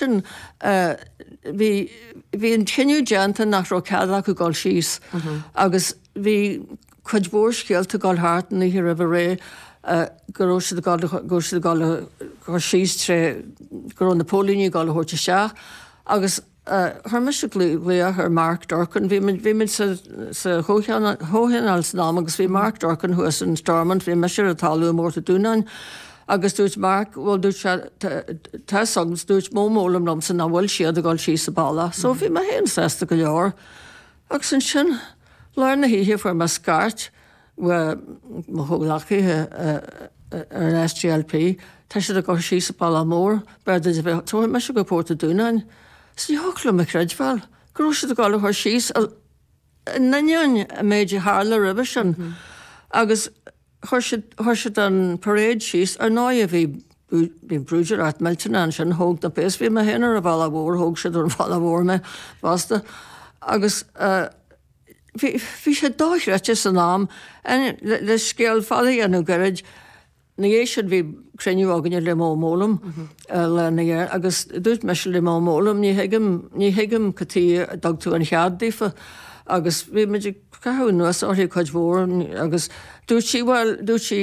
sin, bhí, bhí an cinneadh déanta nach raibh cead acu dul síos agus bhí cuid mhór scéalta ag dul thart an oíche roimh ré go raibh siad ag dul, go raibh siad ag dul a chur síos tré, go raibh na póilíní ag dul a thabhairt isteach agus chuir mise glaoch ar Mark Durkan, bhí muid, bhí muid sa, sa chomhthionól san am agus bhí Mark Durkan thuas in Stormont, bhí mise ar an talamh i bPort a' Dúnáin. Agus dúirt Mark, bhuel dúirt sé, tá san, dúirt Mo Mowlam liomsa nach bhfuil siad ag dhul síos an bealach. So bhí mé féin sásta go leor. Agus ansin lár na hoíche fuair mé scairt ó mo chomhghleacaithe ar an SDLP, tá siad ag dhul síos an bealach mór, b'fhearr duit a bheith, tabharfaidh mise go Port a' Dúnáin. Is ní thiocfadh liom a chreidbheáil go raibh siad ag dhul a chur síos, in ainneoin an méid a tharla roimhe sin. Agus. Chuir siad, chuir siad an parade síos ar ndóigh a bhí, bhí brúidiúlacht mhillteanach ansin, thóg na péas, bhí mé féin ar an bhealach mhór, thóg siad den bhealach mhór mé fosta agus bhí, bhí sé dochreidte san am le scéal fada a dhéanamh gairid. Ina dhiaidh sin bhí cruinniú againne le Mo Mowlam lena agus dúirt mise le Mo Mowlam ní thuigim, ní thuigim cad tuige a dtug tú an cead daofa agus bhí muid ag Caitheamh anuas uirthi cuid mhór agus dúirt sí, bhuel, dúirt sí,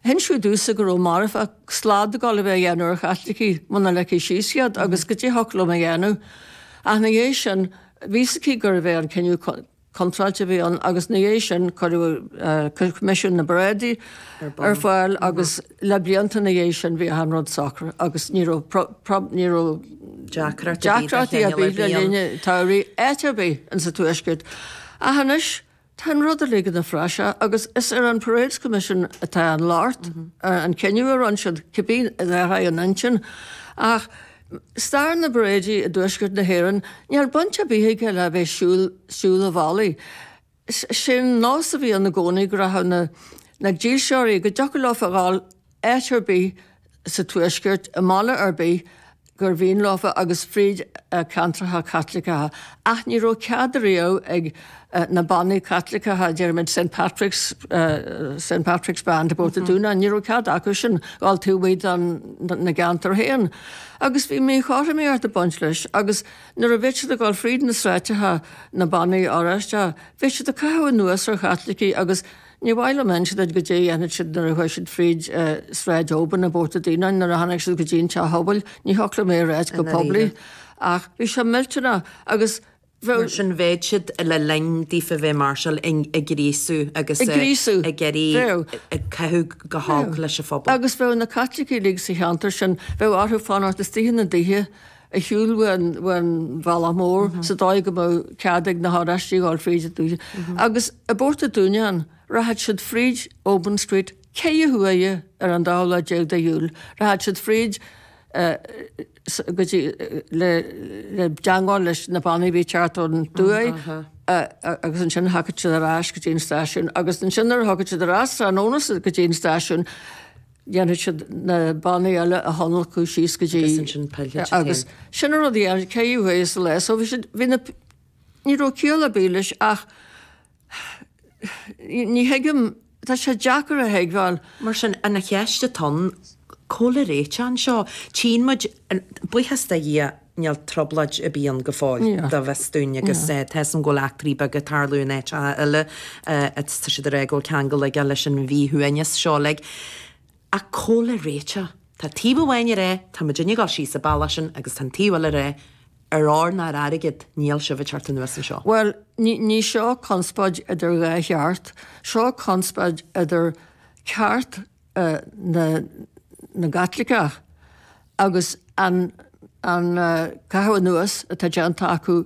hinsíodh domhsa go raibh marfach, slad ag dul a bheith á dhéanamh ar Chaitlicigh muna ligfí síos iad agus goidé a thiocfadh liom a dhéanamh. Ach ina dhiaidh sin, bhí a fhios aici gurbh é an cinneadh contráilte a bhí ann agus ina dhiaidh sin cuireadh Coimisiún na bParáidí ar fáil agus. Le blianta ina dhiaidh sin bhí an rud socraithe agus ní raibh ní raibh deacrachtaí ar bith le linn an tsamhraidh áit ar bith ins an Tuaisceart. Ach anois tá an rud uilig ina phraiseach agus is ar an Parades Commission atá an locht, an cinneadh a rinn siad cibé ar aghaidh an intinn. Ach stair na bparáidí i dTuaisceart na hÉireann, níl baint ar bith aige le bheith ag siúl an bhealaigh. Sé'n nós a bhí ann i gcónaí go rachadh na dílseoirí, go dtiocfadh leofa a dhul áit ar bith sa Tuaisceart, i mbaile ar bith gur mhian leofa agus fríd ceantracha Caitliceacha. Ach ní raibh cead riamh ag na bannaí Caitliceacha, deirimid Saint Patrick's, Saint Patrick's Band i bPort a' Dúnáin, ní raibh cead acu sin dhul taobh amuigh dena gceantar féin. Agus bhí míchothromaíocht ag baint leis agus. Nuair a bheadh siad ag dul fríd na sráideacha, na bannaí Oráisteacha, bheadh siad ag caitheamh anuas ar Chaitlicigh agus níor mhaith liom insint duit goidé a dhéanfadh siad nuair a chuaigh siad fríd Sráid Obin i bPort a' Dúnáin nuair a tháinig siad go dtí an teach pobail, ní thiocfadh liom é a ráit go poiblí ach bhí sé millteanach agus bheadh. Mar sin bheadh siad le linn daofa bheith ag máirseáil ag gríosú agus ag iarraidh, bheadh, ag caitheamh go holc leis an phobal. Agus bheadh na Caitlicigh uilig sa cheantar sin, bheadh orthu fanacht istigh ina dtithe, ar shiúl ón bhealach mór sa dóigh go mbeadh cead ag na hOráistigh dhul fríd an dúiche. Agus i bPort a' Dúnáin rachadh siad fríd Obins Street ceithre huaire ar an dóú lá déag de Iúil, rachadh siad fríd go dtí le teangmháil leis na bannaí a bhí ag teacht ón tuaith agus ansin thiocfadh siad ar ais go dtí an stáisiún agus ansin nuair a thiocfadh siad ar ais tráthnóna go dtí an stáisiún dhéanfadh siad na bannaí eile a thionlacadh síos go dtí. Agus ansin phillfeadh siad féin. Sin an rud a dhéanfadh ceithre huaire sa lá. So bhí siad, bhí na, ní raibh ciall ar bith leis ach ní thuigim, tá sé deacair a thuigbheáil. Mar sin, an cheist atá ann, cá bhfuil an réiteach anseo, tchíonn muid, buíochas do Dhia, níl trioblóid ar bith ann go fóill go bhfios dúinn agus tá a fhios againn go bhfuil eachtraí beaga ag tarlú in áiteacha eile agus tá siad ag rá go bhfuil ceangal aige leis an mhíshuaimhneas seo uilig ach cá bhfuil an réiteach tá taobh amháin ag rá tá muidinne ag dul síos an bealach sin agus tá an taobh eile ag rá ar ór ná ar airgead níl sibh ag teacht anuas anseo. Bhuel, ní, ní seo conspóid idir dhá cheart, seo conspóid idir ceart na gCaitliceach agus an caitheamh anuas atá déanta acu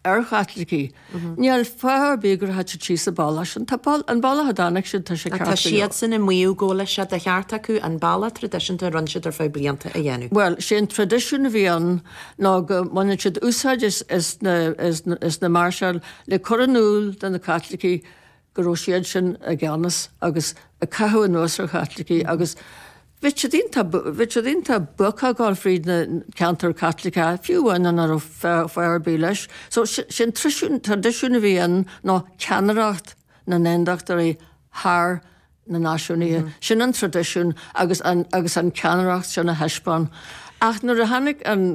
ar Chaitlicigh. Níl fáth ar bith go rachadh siad síos an bealach sin. Tá an bealach a dtáinig siad tá sé ceart go leor. Tá siadsan ag maíomh go bhfuil sé de cheart acu an bealach traidisiúnta a rinne siad ar feadh blianta a dhéanamh. Bhuel, sé an traidisiún a bhí ann ná go mbaineann siad úsáid as na máirseáil le cur in iúl do na Caitlicigh go raibh siadsan i gceannas agus ag caitheamh anuas ar Chaitlicigh agus bhí siad iontach bhí siad iontach buach ag gabháil fríd na ceantair Caitliceacha, fiú amháin muna raibh fáth ar bith leis. So sé an traidisiún a bhí ann ná ceannaireacht na nAondachtóirí thar na náisiúnaithe. Sin an traidisiún agus an agus an ceannaireacht sin a thaispeáint. Ach nuair a tháinig an.